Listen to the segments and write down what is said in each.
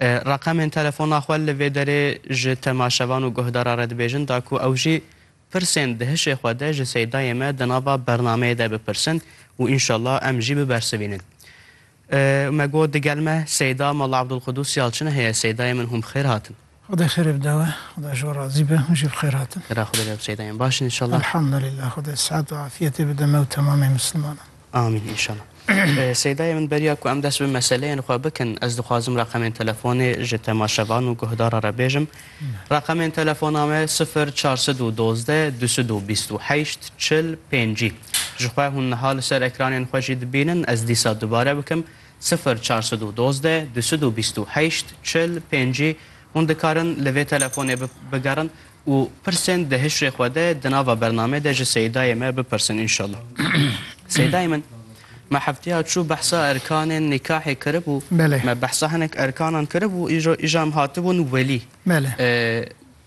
Reqemên telefona xwe li vê derê ji temaşevan û guhdara re dibêjin da ku ew jî pirsên di hişê xwe de ji Seydayê me di nava bernameyê de bipirsin û înşela em jî bibersivînin. Me got digel me Seyda Molla Abdulqudûs Yalçin heye Seydayê min hûn bi xêr hatin. Xwedê xêrê bide we. Xweda ji we razî be. Hûn jî bi xêr hatin. Xêra Xwedê be bi şeydayên baş in înşallah. Elhamdulillah Xwedê sihet û afiyetê bide me û temamê misilmanan. Amîn înşallah. Seydayê min beriya ku em dest bi meseleyên xwe bikin ez dixwazim reqemên telefonê ji temaşevan û guhdara re bêjim. Reqemên telefona me sifir çar sed û dozdeh du sed û bîst û heşt çil pêncî. Ji xwe hûn niha li ser ekranên xwe jî dibînin ez dîsa dubare bikim Sifir çar sed û dozdeh du sed û bîst û heşt çil pêncî hûn dikarin li vê telefonê bigerin û pirsên di hişrê xwe de di nava bernamê de ji Seyîdayê me bipirsin înşallah. Seyîdayê min me hefteya çû behsa erkanên nîkahê kiribû, me behsa hinek erkanan kiribû îro îja em hatibûn welî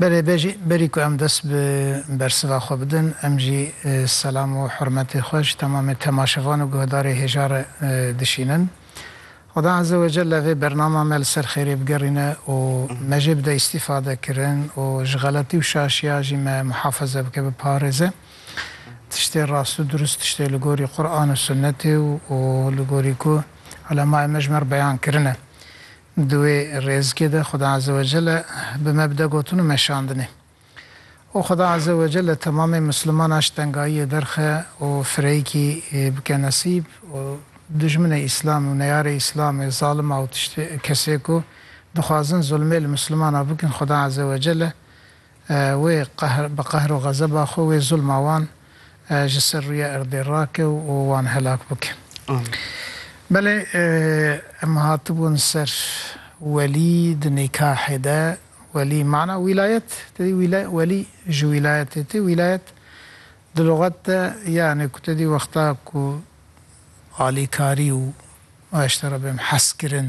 Belê bejî, berî ku em dest bi bersiva xwe bidin, em jî selam û hurmetê xwe ji temamê temaşevan û guhdarê hêja re dişînin. Xweda Eze we Celle vê bernama me li ser xêrê bigerîne û me jê bide îstîfade kirin û ji xeletî û şaşiya jî me muhafeze bike, biparêze. Tiştê rast û durust, tiştê li gorî Quran û Sunnetê û li gorî ku ulemayê me ji me re beyan kirine. Di wê rêzikê de Xweda Azze we Celle bi me bi de gotin û meşandinê. Û Xweda Azze we Celle temamê Mislimanan ji tengayiyê derxe û fireyikî bike nesîb û dijminê Îslamê û neyarê Îslamê, zalima û tiştê kesê ku dixwazin zulmê li Mislimanan bikin Xweda Azze we Celle Wê qehr bi qehr û xezeba xwe wê zulma wan ji ser rûyê erdê rake û wan helak bike. Belê em hatibûn ser welî di nîkahê de welî mana wîlayet te dî wîlay welî ji wîlayetê tê wîlayet di luxet de yanê ku te dî wexta ku alîkarî û waştera bêm heskirin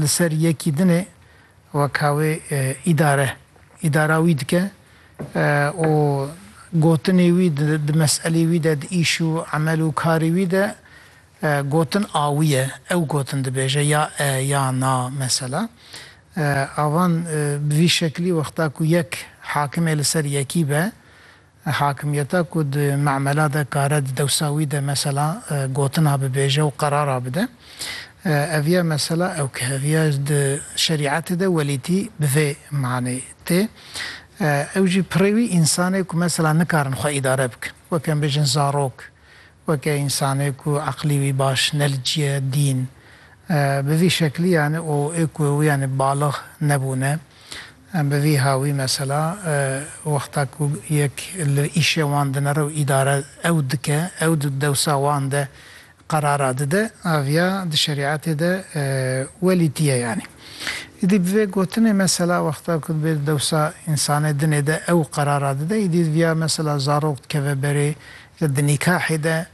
Li ser yekî dinê weka wê îdare îdara wî dike û gotinê wî di meselê wî de, di îş û emel û karê wî de gotin a wî ye. Ew gotin dibêje ya e ya na mesela. Avan bi vî şeklî wexta ku yek hakimê li ser yekî be Hakimiyeta ku di memela de kare di dewsa wî de mesela gotina bibêje û qerara bide, ev ye mesela ew ke ev ye di şerîetê de welîtî bi vê manê tê. Ew jî pirê wî însanê ku mesela nikarin xwe îdare bikin. Weke em bêjin zarok. Weke însanê ku eqlî wî baş ne li cî ye, dîn bi vî şeklî yanê û ê ku wî yanê balix nebûne. Em bi vî hawî mesela wexta ku yek li îşê wan dinere û îdare ew dike, ew di dewsa wan de qerara dide, aviya di şerîetê de welîtî ye yanê. Îdî bi vê gotinê mesela wexta ku divê di dewsa însanê dinê de ew qerara dide, îdî viya mesela zarok dikeve berê Di nîkahê de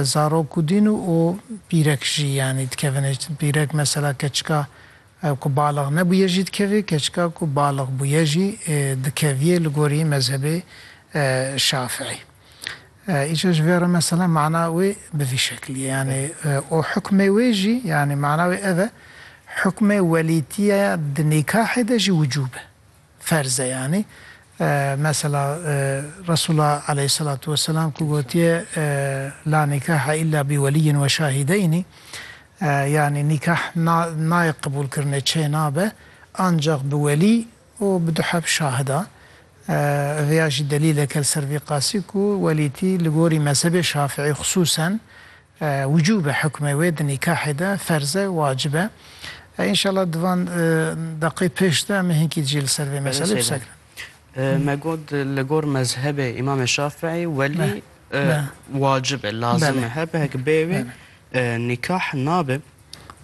zarok û dîn û pîrek jî yanî dikevine. Pîrek mesela keçika ku balix nebûye jî dikevê, keçika ku balix bûye jî dikeviyê li gorî mezhebê Şafiî. Îca ji vê re mesela mana wê bi vî şeklî ye yanî û hukmê wê jî yanî mana wê ev e hukmê welîtîya di nîkahê de jî wicûb e. Ferz e yanî. Mesela Resûla aleyhisselatu wesselam ku gotiye La nîkahe îlla bi welîyin we şahîdeynî yanî nîkah nayê qebûlkirinê çê nabe ancax bi welî û bi du heb şahida. Vêya jî delîleke li ser vî qasî ku welîtî li gorî mezhebê şafîî xisûsen Wicûb e hukmê wê di nîkahê de ferz e, wacib e. Înşallah di van deqê pêş de em ê hinkî jî li ser vê meselê qise kirin. Me got li gor mezhebê Îmamê Şafîî welî wacib e, lazim e, her bihek bê wê nîkah nabe.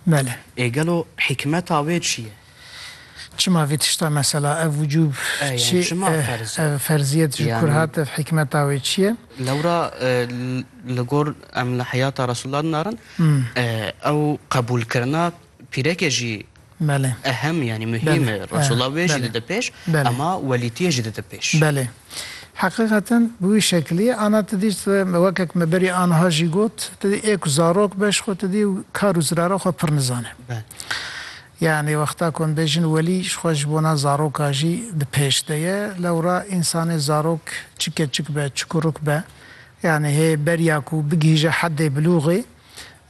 Belê. Ê gelo hîkmeta wê çi ye? Çima vê tişta mesela ev wicûb çi ev ferziyet ji kur hat ev hikmeta wê çi ye? Lewra li gor em li heyata Resûla dinarin ew qebûlkirina pîrekê jî ehem yanî muhîm e. Resûla wê jî dide pêş ema welîtiyê jî dide pêş. Belê. Heqîqeten bi wî şekilî ye. Ana tu dî wekek me berî aniha jî got tu dî ê ku zarok be ji xwe tu dî kar û zirara xwe pir nizane. Yanî wexta ku em bêjin welî ji xwe ji bona zaroka jî di pêş de ye. Lewra însanê zarok çi keçik be, çi kuruk be, yanî hê beriya ku bigihîje hedê bilûxê,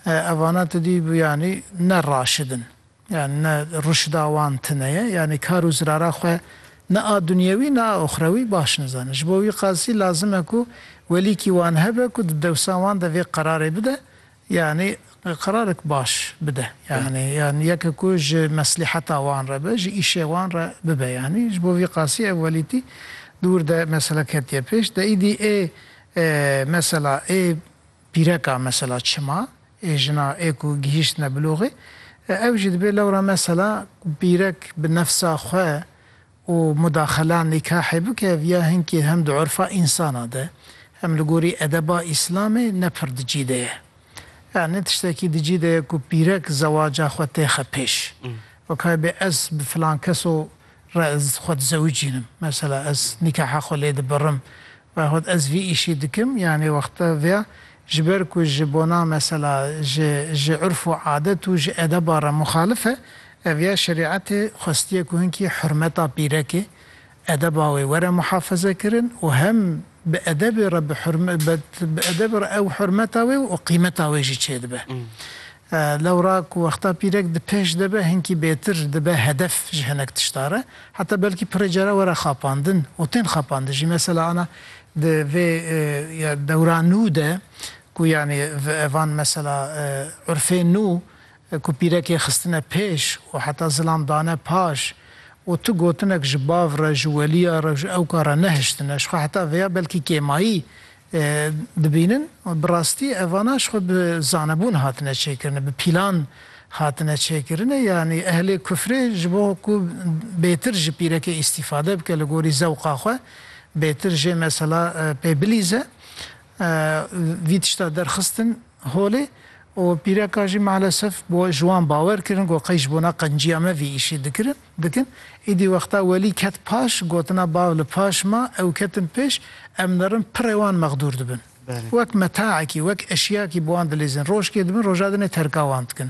evana tu dî bû yanî ne raşid in. Yanî ne ruşda wan tine ye. Yanî kar û zirara xwe ne a dunyewî ne a oxrewî baş nizanin. Ji bo wî qasî lazim e ku welîkî wan hebe ku di dewsa wan de vê qerarê bide Yanî qerarek baş bide. Yanî yan yeke ku ji meslîheta wan re be, ji îşê wan re bibe. Yanî ji bo vî qasî ev welîtî dûr de mesela ketiye pêş. De îdî ê mesela ê pîreka mesela çima ê jina ê ku gihîştine biloxê ew jî dibê lewra mesela pîrek bi nefsa xwe û mudaxela nîkahê bike ev ya hinkî hem di urfa însanan de hem li gorî edeba îslamê ne pir di cî de ye. Ya ne tiştekî di cî de ye ku pîrek zewaca xwe têxe pêş. Wekayê bê ez bi filan keso re ez xwe dizewicînim. Mesela ez nîkaha xwe lê dibirim. Xwed ez vî îşî dikim yanê wexta via ji ber ku ji bona mesela ji ji urf û adet û ji edeba re muxalif e, ev ya şerîetê xwestiye ku hinkî hurmeta pîrekê, edeba wê were muhafezekirin û hem bi edebê re bi hurm bi edebê re ew hurmeta wê û qîmeta wê jî çêdibe. Lewra ku wexta pîrek di pêş de be hinkî bêtir dibe hedef ji hinek tişta re. Heta belkî pirê cara were xapandin û tên xapandin jî. Mesela ana di vê ya dewra nû de ku yanî van mesela urfê nû ku pîrekê xistine pêş û heta zilam dane paş û tu gotinek ji bav re, ji weliya re û ji ewka re nehiştine. Jixwe heta vêya belkî kêmayî dibînin û bi rastî evana ji xwe bi zanebûn hatine çêkirine, bi pîlan hatine çêkirine yanî ehlê kufrê ji bo ku bêtir ji pîrekê îstîfade bike li gorî zewqa xwe, bêtir jê mesela pê bilîze vî tişta derxistin Holê û pîreka jî malesef bo ji wan bawer kirin ku qey ji bona qenciya me vî îşî dikirin, dikin. Îdî wexta Welî ket paş, gotina bav li paş ma, ew ketin pêş, em nirin pirê wan mexdûr dibin. Wek metaekî, wek eşyakî bi wan dilîzin. Rojkê dibin, roja dinê terka wan dikin.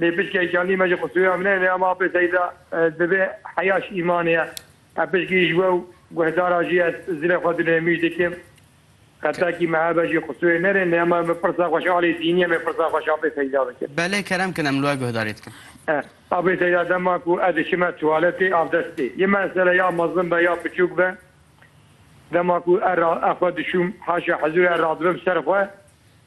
Lê pişkî hêşandî me ji xwe soya min hene em apê seyda divê heya ji îmanê ye. Em pişkî ji we û guhdaran jî ez zilê xwe dune mîj dikim. Xetakî me hebe jî xwe soyê nerê lê em me pirsa xwe ji aliyê dînî em ê pirsa xwe ji apê seyda bikin. Belê kerem kin em li we guhdarî dikin. Apê seyda dema ku ez diçime tuwaletê avdestê yê me sere ya mezin be ya biçûk be dema ku ez xwe dişûm haşa hizûrê ez radibim ser xwe.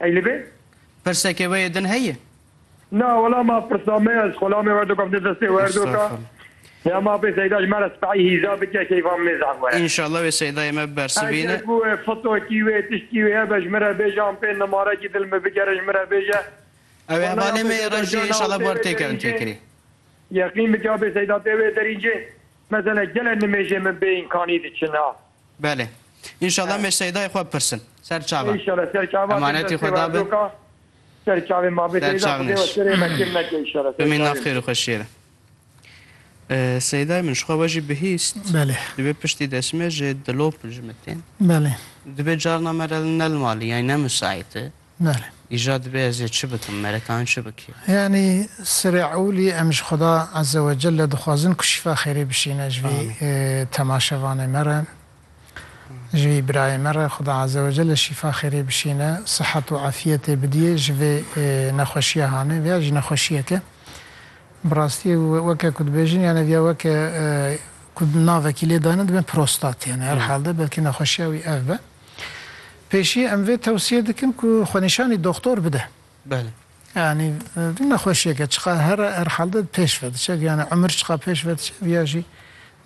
Ey li vê. Pirsekê wê yê din heye? Na wela ma pirsa me ya ji xwe la me werdo kevne destê we her do ka. Ya ma pê Seyda ji me re sibehî hîza bike keyfa min ê zehf were. Înşallah wê Seydayê me bibersivîne. Eger ku wê fotokî wê tiştî wê hebe ji min re bêje an pê nimarekî dil min bigere ji min re bêje. Ew ê hevalê me yê reş jî înşallah bi wer têkevin têkirî. Yeqîn bike ya pê Seyda tê wê derî cê. Mesele gelek nimêjên min bê înkanî diçin a. Belê. Înşallah me Seydayê xwe bipirsin. Ser çavan. Înşallah ser çavan. Emanetê xwe da bin. Ser çavê ma be Seyda xwedê we serê me kêm neke înşallah. Ser çavê. Bimîn nav xêr û xweşiyê re. Seydayê min jixwe we jî bihîst. Belê. Divê piştî destê me ji dilop ji min tên. Belê. Divê carna me re ne li malê yanî ne misaît e. Belê. Îja dibê ez ê çi bikim, merekan çi bikî? Yanî serê ewlî em ji Xweda Eze we Celle dixwazin ku şîfa xêrî bişîne ji vî temaşevanê me re, ji vî birayê me re Xweda Eze we Celle şîfa xêrê bişîne, sihet û efîyetê bidîyê ji vê nexweşîya hanê. Viya jî nexweşîyek e. Bi rastî weke ku dibêjin yanê viya weke ku navekî lê dane dibe prostatê yanê her hal de belkî nexweşîya wî ev be. Pêşî em vê tewsîye dikin ku xwenîşanî doxtor bide. Belê. Yanî vî nexweşîyek e çiqas her her halde pêş ve diçe yanî umir çiqas pêş ve diçe vîya jî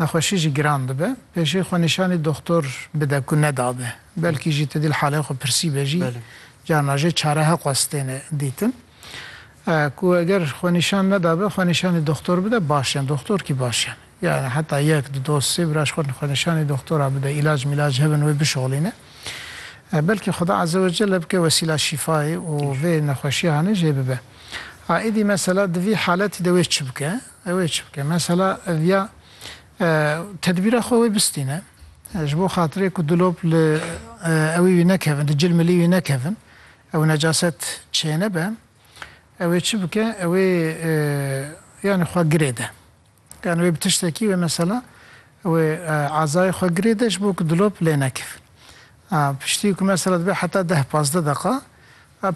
nexweşî jî giran dibe. Pêşî xwenîşanî doxtor bide ku nedabe. Belkî jî tu dîl halê xwe pirsîbe jî carna jê çare he qas têne dîtin. Ku eger xwenîşan nedabe xwenîşanî doxtor bide baş e. Doxtor kî baş e. Yanî heta yek, du doz, sê biraj xwe xwenîşanê doxtora bide, îlac mîlac hebin wê bişoxlîne. Belkî Xuda Azewecelle bike wesîla şîfayê û vê nexweşiya hanê jê bibe. A êdî mesela di vî haletî de wê çi bike? Wê çi bike? Mesela ya tedbîra xwe wê bistîne ji bo xatirê ku dilop li ewî wî nekevin, di cil milî wî nekevin û necaset çênebe, wê çi bike? Wê yanî xwe girêde. Yan wê bi tiştekî wê mesela wê ezayê xwe girê de ji bo ku dilop lê nekevin. Piştî ku mesela dibe heta deh pazdeh deqa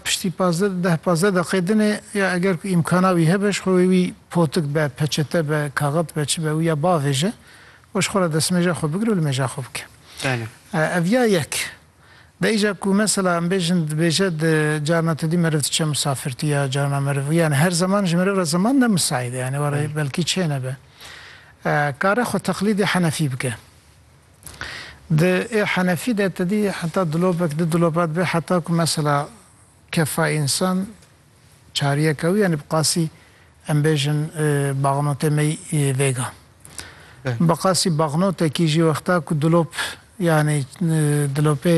piştî pazdeh deh pazdeh deqê din ê ya eger ku îmkana wî hebe ji xwe wê wî potik be, peçete be, kaxit be çi be wî ya bavêje û ji xwe re destmêja xwe bigire û li mêja xwe bike. Ev ya yek. Dayî ca ku mesela em bêjin dibêje di carna tu dî meriv diçe misafirtî ya carna meriv yanî her zeman ji meriv re zeman ne misaîd e yanî were belkî çê nebe kare xwe teqlîdê henefî bike. Di ê henefî de tu dî heta dilopek di dilopa dibe heta ku mesela kefa însan Çariyeke wî yanî bi qasî em bêjin baxnotê me yî vêga. Bi qasî baxnotekî jî wexta ku dilop yanî dilopê